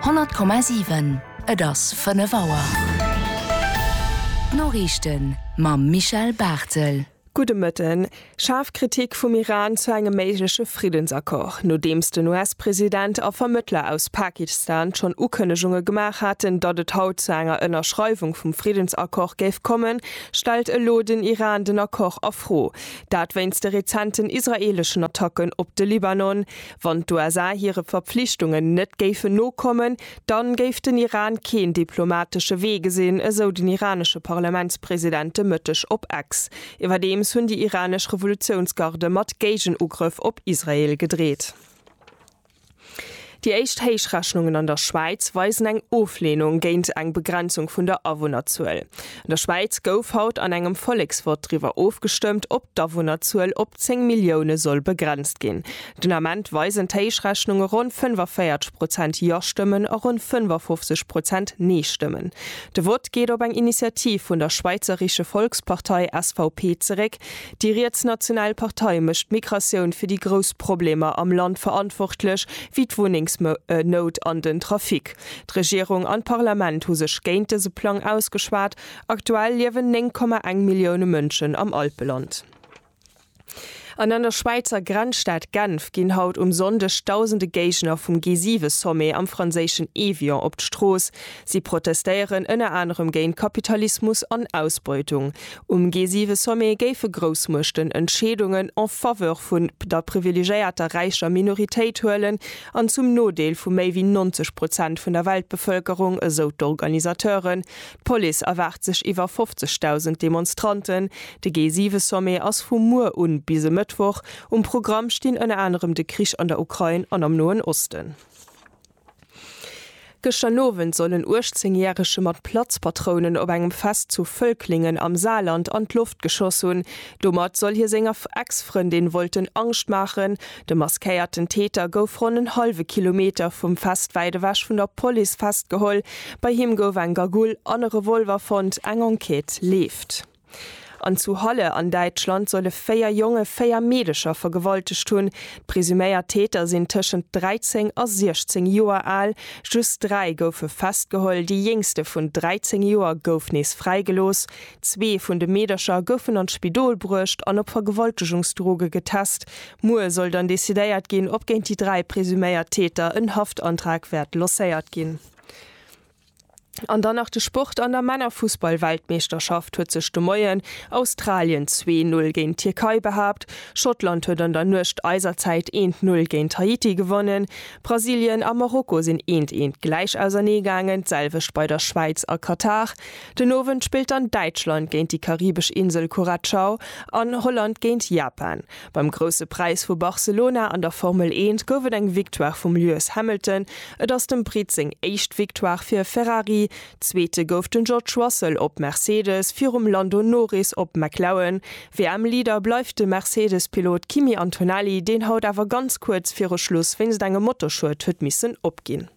100,7 Et ass 5 Auer. D'Noriichten mam Michel Barthel. Gudde Mëtten. Schaarf Kritik vum Iran zu engem méigleche Friddensaccord. Nodeems den US-President a Vermëttler aus Pakistan schonn Ukënnegunge gemaach haten, datt et haut zu enger Ënnerschreiwung vum Friddensaccord géif kommen, stellt elo den Iran den Accord a Fro. Dat wéinst de rezenten israeeleschen Attacken op de Libanon, Wann d'USA hire Verpflichtungen net géifen nokommen, dann géif den Iran keen diplomatesche Wee gesinn, esou den iranesche Parlamentspresident de Mëtteg op X. Iwwerdeems hunn déi iranesch Revolutiounsgarde mat Géigenugrëff op Israel gedreet. Déi éischt Héichrechnungen an der Schwäiz weisen eng Ofleenung géint eng Begrenzung vun der Awunnerzuel. An der Schwäiz gouf haut an engem Volleksvott driwwer ofgestëmmt, ob d'Awunnerzuel op 10 Millioune soll begrenzt ginn. Den Ament weisen d'Héichrechnunge ronn 45 Prozent Jo-Stëmmen a ronn 55 Prozent Nee-Stëmmen. De Vott geet op eng Initiativ vun der Schweizerische Volkspartei, SVP, zeréck. Déi rietsnational Partei mécht d'Migratioun fir déi grouss Problemer am Land verantwortlech, wéi d'Wunnengsnout an den Trafic. D'Regierung an d'Parlament hu sech géint dëse Plang ausgeschwat. Aktuell liewen 9,1 Millioune Mënschen am Alpeland. An an der Schwäizer Grenzstad Genf ginn haut um Sonndeg dausende Géigner vum G7-Sommet am franséischen Évian op d'Strooss. Si protestéieren ënner anerem géint Kapitalismus an Ausbeutung. Um G7-Sommet géife Groussmuechten Entscheedungen en faveur vun der privilegéierter räicher Minoritéit huelen. an zum Nodeel vu méi wéi 90 Prozent vun der Weltbevëlkerung, esou d'Organisateuren. D'Police erwaart sech iwwer 50.000 Demonstranten. De G7-Sommet ass vu muer u bis e Mëttwoch. Um Programm stinn ënner anerem de Krich an der Ukrain an am Noen Osten. Gëschter Nowend soll en 18 järege mat Platzpatrounen op engem Fest zu Völklingen am Saarland an d'Loft geschoss hunn. Domat soll hie senger Ex-Frëndin wollten Angscht maachen. De maskéierten Täter gouf ronn en hallwe Kilometer vum Fest wäit ewech vun der Police festgeholl. Bei him gouf eng Gagoul an e Revolver fonnt. Eng Enquête leeft. An zu Halle an Däitschland solle véier Jonge véier Meedecher vergewaltegt hunn. D'presuméiert Täter sinn tëschent 13 a 16 Joer al. Just dräi goufe festgeholl, déi jéngste vun 13 Joer gouf nees fräigelooss. Zwee vun de Meedercher goufen an d'Spidol bruecht an op Vergewaltegungsdroge getest. Muer soll dann decidéiert ginn, ob géint déi dräi presuméiert Täter en Haftantrag wäert lancéiert ginn. An dann nach de Sport, An der Männerfussballweltmeeschterschaft huet sech de Moien Australien zwee Null géint d'Tierkei behaapt, Schottland huet an der Nuecht eiser Zäit eent Null géint Haiti gewonnen, Brasilien a Marokko sinn eent eent gläich ausernee gaangen, d'selwecht bei der Schwäiz a Katar. Den Owend spillt dann Däitschland géint déi karibesch Insel Curacao an Holland géint Japan. Beim Grousse Präis vu Barcelona an der Formel Eent gouf et eng Victoire vum Lewis Hamilton. Et ass dem Britt seng éischt Victoire fir Ferrari. Zweete gouf den George Russell op Mercedes virum Lando Norris op McLaren. WM-Leader bleift de Mercedes-Pilot Kimi Antonelli, deen haut awer ganz kuerz viru Schluss wéinst engem Motorschued huet missen opginn.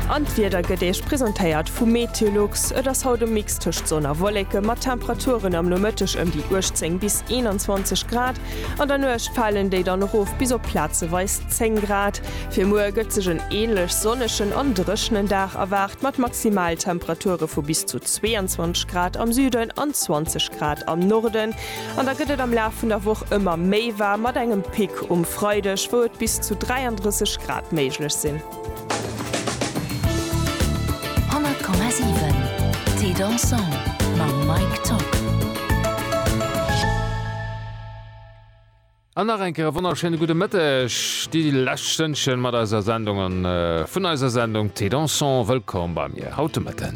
An d'Wieder gëtt Iech presentéiert vu Meteolux. Et ass haut e Mix tëscht Sonn a Wolleke mat Temperaturen am Nomëtteg ëm déi 18 bis 21 Grad. An der Nuecht falen déi dann erof bis op plazeweis 10 Grad. Fir muer gëtt sech en änlech sonnegen an dréchnen Dag erwaart mat Maximaltemperature vu bis zu 22 Grad am Süden an 20 Grad am Norden. An da gëtt et am Laf vun der Woch ëmmer méi waarm, mat engem Pic um Freideg, wou et bis zu 33 Grad méiglech sinn. An nach eng Kéier e wonnerschéine gudde Mëtteg. Déi lescht Stënnchen mat eiser Sendung an vun eiser Sendung Thé Dansant. Wëllkomm bei mir haut de Mëtten.